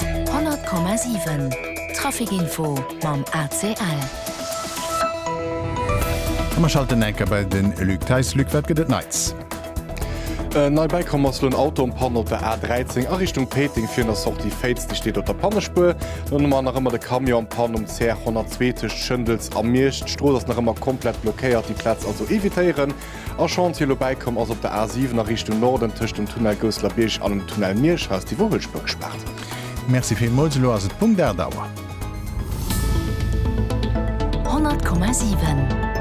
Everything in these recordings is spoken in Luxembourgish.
100,7 Trafic Info mam ACL. A mer schalten eng Kéier bei de Luc Theis. Luc, wat gëtt et Neits? Nei bäikomm ass elo en Auto um Panne op der A 13 a Richtung Péiteng virun der Sortie Féiz. Dee steet op der Pannespuer. Dann hu mer nach ëmmer de Camion am Panne um CR 102 tëscht Schëndels a Miersch. D'Strooss ass nach ëmmer komplett blockéiert, déi Plaz also evitéieren. E Chantier elo bäikomm ass op der A 7 a Richtung Norden tëscht dem Tunnel Gousselerbiërg an dem Tunnel Mierschhaus, déi wor huet Spuer gespaart. Merci villmools, elo ass et Punkt 8 Auer. 100,7.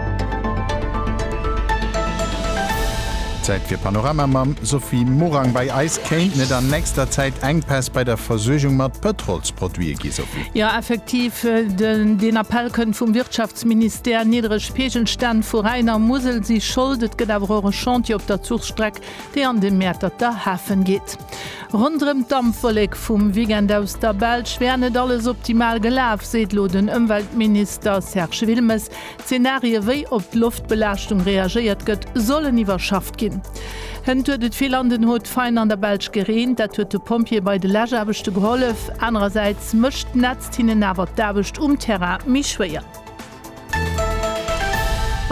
Zäit fir Panorama mam Sophie Morang. Bei eis kéint net an nächster Zäit Enkpäss bei der Versuergung mat Pëtrolsproduite gi, Sophie. Jo, effektiv, deen Appell kënnt vum Wirtschaftsministère. D'Peegelstänn vu Rhäin a Musel si Schold. Et gëtt awer och e Chantier op der Zuchstreck, déi an de Mäerterter Hafen geet. Ronderëm d'Dampwollek vum Weekend aus der Belsch wär net alles optimal gelaf, seet elo den Ëmweltminister Serge Wilmes. D'Zenarie wéi op d'Loftbelaaschtung reagéiert gëtt, sollen iwwerschafft ginn. Hënt huet et vill an den Hautes-Faines an der Belsch gereent. Dat huet de Pompjeeë bei de Läschaarbechte gehollef. Anerersäits mécht d'Nätzt hinnen awer d'Aarbecht um Terrain méi schwéier.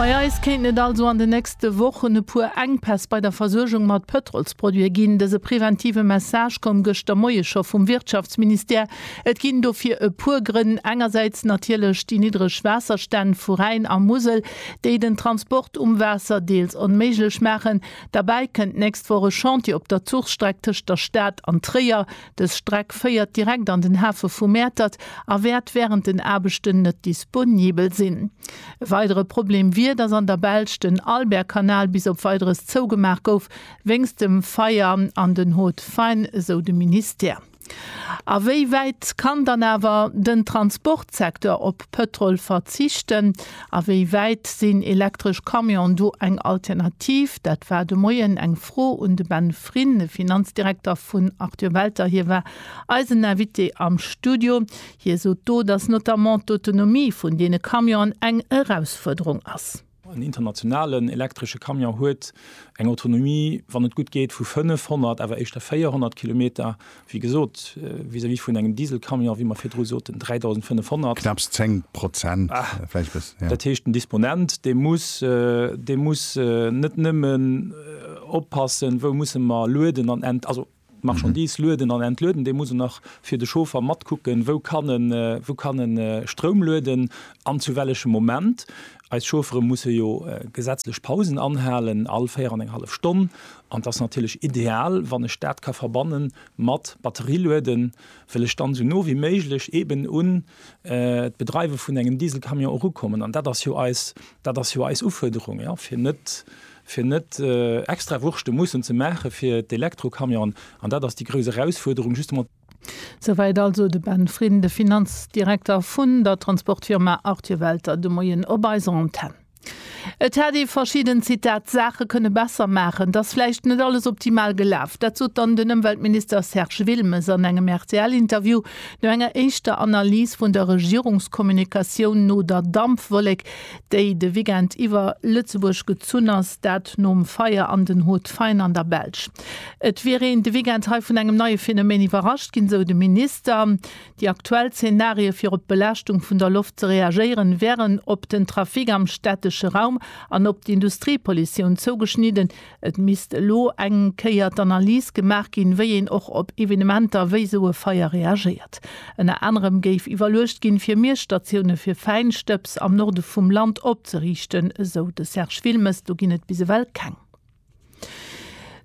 Bei eis kéinten et also an de nächste Wochen e puer Enkpäss bei der Versuergung mat Pëtrolsproduite ginn. Dëse preventive Message koum gëschter Moie scho vum Wirtschaftsministère. Et ginn dofir e puer Grënn, engersäits natierlech déi niddreg Waasserstänn vu Rhäin a Musel, déi den Transport um Waasser deels onméiglech maachen. Derbäi kënnt d'nächst Woch e Chantier op der Zuchstreck tëscht der Stad an Tréier. Dës Streck féiert direkt an den Hafe vu Mäertert a wäert wärend den Aarbechten net disponibel sinn. E weidere Problem wier, datt an der Belsch den Albertkanal bis op Weideres zougemaach gouf wéinst dem Feier an den Hautes Faines, esou de Ministère. A wéi wäit kann dann awer den Transportsecteur op Pëtrol verzichten? A wéi wäit sinn elektresch Camion do eng Alternativ? Dat war de Moien eng. Fro un de Ben Frin, de Finanzdirekter vun Arthur Welter. Hie war eisen Invité am Studio. Hie sot do, datt notamment d'Autonomie vun deene Camionen eng Erausfuerderung ass. En internationalen elektresche Camion huet eng Autonomie, wann et gutt geet, vu 500, awer éischter 400 Kilometer. Wéi gesot, vis-à-vis vun engem Dieselcamion, wéi mer virdru soten, 3.500. Knapps 10 Prozent, vläicht bëssen, jo. Dat heescht, den Disponent, dee muss, dee muss net nëmmen oppassen, wou musse mer lueden an ent-, also d'Marchandise lueden an entlueden, dee muss och nach fir de Chauffer matkucken, wou kann e, wou kann e Stroum lueden an zu wellechem Moment. Eis Chauffere musse jo gesetzlech Pausen anhalen, all 4 an eng hallef Stonn, an et ass natierlech ideal, wann ech dat ka verbanne mat Batterielueden, wëll ech dann esou no wéi méiglech eben un d'Bedreiwe vun engem Dieselcamion erukommen. An dat ass jo eis, dat ass jo eis Ufuerderung, jo, fir net, fir net extra Wurschte mussen ze maache fir d'Elektrocamionen. An dat ass déi grouss Erausfuerderung, justement. Souwäit also de Ben Frin, de Finanzdirekter vun der Transportfirma Arthur Welter, de Moien op eiser Antenn. Et hätt ee verschidden, Zitat, d'Saache kënne besser maachen. Et ass vläicht net alles optimal gelaf. Dat sot dann den Ëmweltminister Serge Wilmes an engem RTL-Interview no enger éischter Analys vun der Regierungskommunikatioun no der Dampwollek, déi de Weekend iwwer Lëtzebuerg gezunn ass. Dat nom Feier an den Hautes-Fays an der Belsch. Et wier een de Weekend hei vun engem neie Phenomen iwwerrascht ginn, sou de Minister. Déi aktuell Zenarie fir op d'Belaaschtung vun der Loft ze reagéieren, wären op den Trafic am städtesche Raum an op d'Industriepollutioun zougeschnidden. Et misst elo eng Kéier d'Analys gemaach ginn, wéi een och op Evenementer wéi sou e Feier reagéiert. Ënner anerem géif iwwerluecht ginn, fir Miesstatioune fir Fäinstëbs am Norde vum Land opzeriichten, esou de Serge Wilmes. Do ginn et bis ewell keng.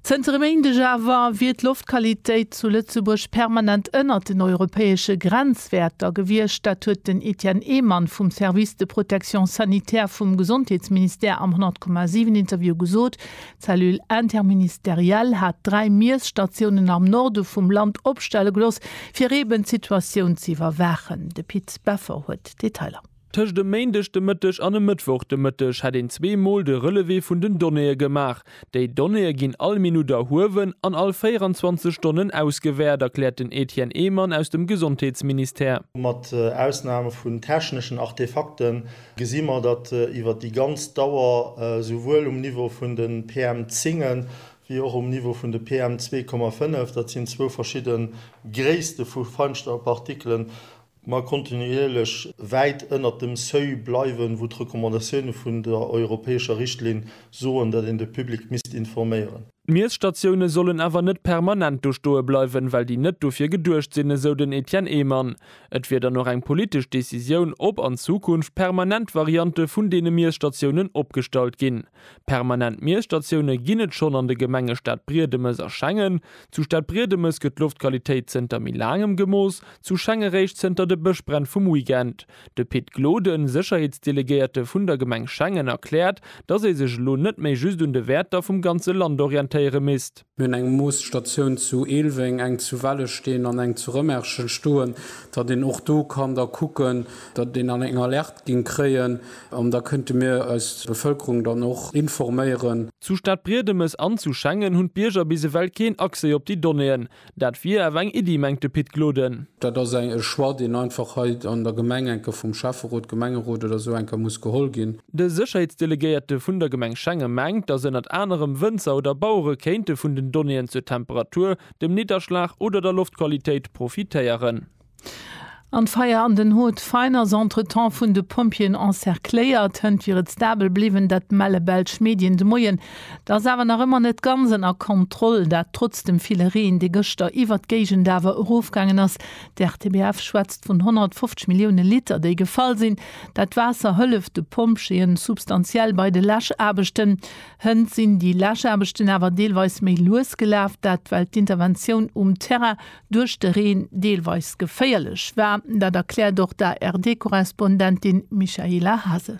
Zënter e Méindeg awer wier d'Loftqualitéit zu Lëtzebuerg permanent ënnert den europäesche Grenzwäerter gewiescht. Dat huet den Etienne Ehmann vum Service de protection sanitaire vum Gesondheetsministère am 100,7 Interview gesot. D'Cellule interministérielle hat dräi Miesstatiounen am Norde vum Land opstelle gelooss, fir eeben d'Situatioun ze iwwerwaachen. De Pit Beffer huet d'Detailer. Tëscht e Méindeg de Mëtteg an e Mëttwoch de Mëtteg hätt een zwee Mol de Relevé vun den Donnéeë gemaach. Déi Donnéeë ginn all Minutt erhuewen an all 24 Stonnen ausgewäert, erkläert den Etienne Ehmann aus dem Gesondheetsministère. Mat Ausnam vun techneschen Artefakte gesi mer, datt iwwer déi ganz Dauer esouwuel um Niveau vun de PM10 wéi och um Niveau vun de PM2,5, dat sinn zwou verschidde Gréisste vu Feinstaubpartikelen, mer kontinuierlech wäit ënnert dem Seuil bleiwen, wou d'Recommandatioune vun der europäescher Richtlinn soen, datt een de Public misst informéieren. D'Miesstatioune sollen awer net permanent do stoe bleiwen, well déi net dofir geduecht sinn, esou den Etienne Ehmann. Et wier dann och eng politesch Decisioun, ob an Zukunft permanent Variante vun deene Miesstatiounen opgestallt ginn. Permanent Miesstatioune ginn et schonn an de Gemenge Stadbriedemes a Schengen. Zu Stadbriedemes gëtt d'Loftqualitéit zënter méi laangem gemooss, zu Schengen réischt zënter de Bëschbränn vum Weekend. De Pit Gloden, Sécherheetsdelegéierte vun der Gemeng Schengen, erkläert, datt ee sech elo net méi just un de Wäerter vum ganze Land orientéiere misst. Mir hunn eng Moosstatioun zu Eelweng, eng zu Wellesteen an eng zu Rëmerschen stoen, datt een och do kann da kucken, datt een dann eng Alerte géing kréien an da kënnte mir eis Bevëlkerung dann och informéieren. Zu Stadbriedemes an zu Schengen hunn d'Bierger bis ewell keen Accès op déi Donnéeën. Dat wier awer eng Iddi, mengt de Pit Gloden. Dat ass e Choix, deen einfach hei an der Gemeng enke vum Schäfferot, Gemengerot oder esou enke muss geholl ginn. De Sécherheetsdelegéierte vun der Gemeng Schenge mengt, datt ënnert anerem Wënzer oder Bauere kéinte vun den Donnéeën zur Temperatur, dem Nidderschlag oder der Loftqualitéit profitéieren. An d'Feier an den Haute Faine ass entretemps vun de Pompjeeën encercléiert. Hënt wiere stabel bliwwen, dat melle belsch Medien de Moien. Et ass awer nach ëmmer net ganz ënner Kontroll, dat trotz dem ville Reen, dee gëschter iwwert d'Géigend awer erofgaangen ass. D'RTBF schwätzt vun 150 Millioune Liter, déi gefall sinn. Dat Waasser hëlleft de Pompjeeë substantiell bei de Läschaarbechten. Hënt sinn déi Läschaarbechten awer deelweis méi lues gelaf. Dat well d'Interventioun um Terrain duerch de Reen deelweis geféierlech war. Dat erkläert och d'ARD-Korrespondentin Michaela Hasel.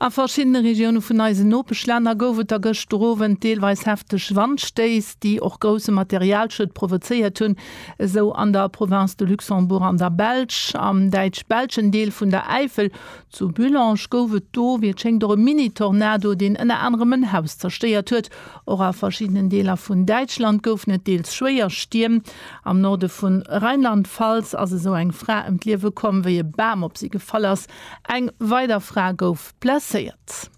A verschiddene Regioune vun eisen Nopeschlänner gouf et da gëschter Owend deelweis hefteg Wandstéiss, déi och grousse Materialschued provozéiert hunn, esou an der Province de Luxembourg an der Belsch. Am däitsch-belschen Deel vun der Äifel, zu Bullange, gouf et do, wéi et schéngt, och e Mini-Tornado, deen ënner anerem en Haus zerstéiert huet. Och a verschiddenen Deeler vun Däitschland goufen et deels schwéier Stierm. Am Norde vu Rheinland-Pfalz ass esou eng Fra ëm d'Liewe komm, wéi e Bam op si gefall ass. Eng weider Fra gouf blesséiert.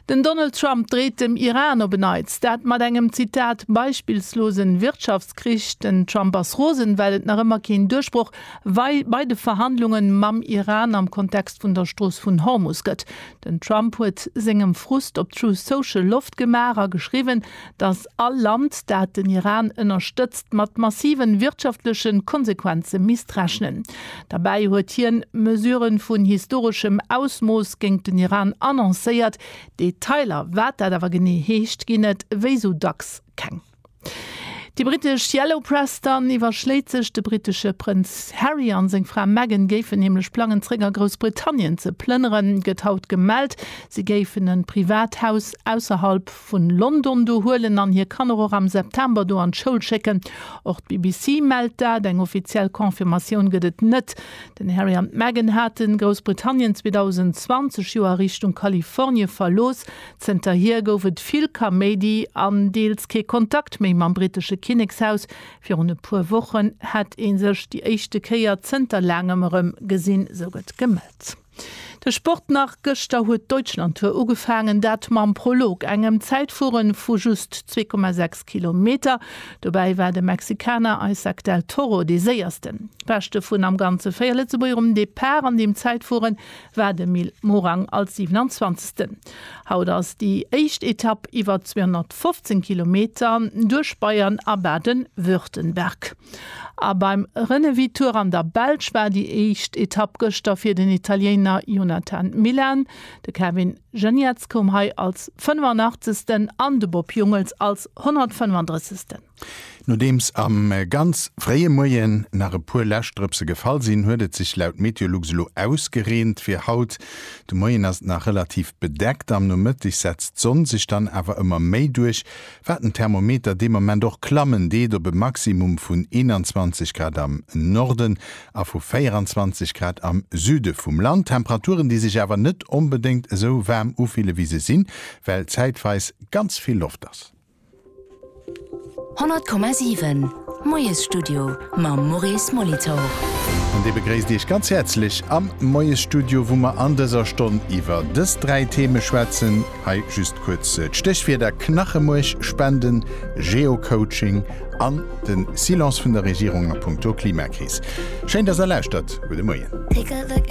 Den Donald Trump dreet dem Iran op en Neits, dat mat engem, Zitat, beispillslosen Wirtschaftskrich. Den Trump ass rosen, well et nach ëmmer keen Duerchbroch bei de Verhandlungen mam Iran am Kontext vun der Strooss vun Hormus gëtt. Den Trump huet sengem Frust op Truth Social Loft gemaach a geschriwwen, datt All Land, dat den Iran ënnerstëtzt, mat massiven wirtschaftleche Konsequenze misst rechnen. Derbäi huet hien Mesurë vun historeschem Ausmooss géint den Iran annoncéiert. Detailer, wat dat awer genee heescht, ginn et wéi sou dacks keng. Déi brittesch Yellow Press dann iwwerschléit sech. De brittesche Prënz Harry an seng Fra Meghan géifen nämlech plangen, zeréck a Groussbritannien ze plënneren, gëtt haut gemellt. Si géifen e Privathaus ausserhalb vun London do huelen an hir Kanner och am September do an d'Schoul schécken. Och d'BBC mellt dat. Eng offiziell Confirmatioun gëtt et net. Den Harry an d'Meghan haten Groussbritannien 2020 jo a Richtung Kalifornie verlooss. Zënterhier gouf et vill Kaméidi an deels kee Kontakt méi mam brittesche Kinnekshaus. Virun e puer Wochen hätt ee sech déi éischte Kéier zënter laangem erëm gesinn, sou gëtt gemellt. De Sport nach, Gëschter huet d'Deutschlandtour ugefaangen, dat mam Prolog, engem Zäitfuere vu just zwee Komma sechs Kilometer. Dobäi war de Mexikaner Isaac del Toro dee Séiersten. Beschte vun am Ganze véier Lëtzebuerger um Depart an deem Zäitfuere war de Mil Morang als 27. Haut ass déi éischt Etapp iwwer 215 Kilometer duerch Bayern a Baden-Württemberg. A beim Renewi Tour an der Belsch war déi éischt Etapp gëschter fir den Italiener Jonathan Milan. De Kevin Geniets koum hei als 85. an de Bob Jungels als 135. Nodeems am ganz fréie Moien nach e puer Läschdrëpse gefall sinn, huet et sech laut Meteolux elo ausgereent. Fir haut de Moien ass et nach relativ bedeckt, am Nomëtteg setzt d'Sonn sech dann awer ëmmer méi duerch, Wat den Thermometer dee Moment och klammen deet, op e Maximum vun 21 Grad am Norden a vu 24 Grad am Süde vum Land. Temperaturen, déi sech awer net onbedéngt esou waarm ufille wéi se sinn, well zäitweis ganz vill Loft ass. 100,7, Moiesstudio mam Maurice Molitor. An dee begréisst Iech ganz häerzlech am Moiesstudio, wou mer an dëser Stonn iwwer dës dräi Theme schwätzen. Hei just kuerz d'Stéchwierder, Knachemuerch spenden, Geocoaching an de Silence vun der Regierung a punkto Klimakris. Schéin, dass der lauschtert. Gudde Moien.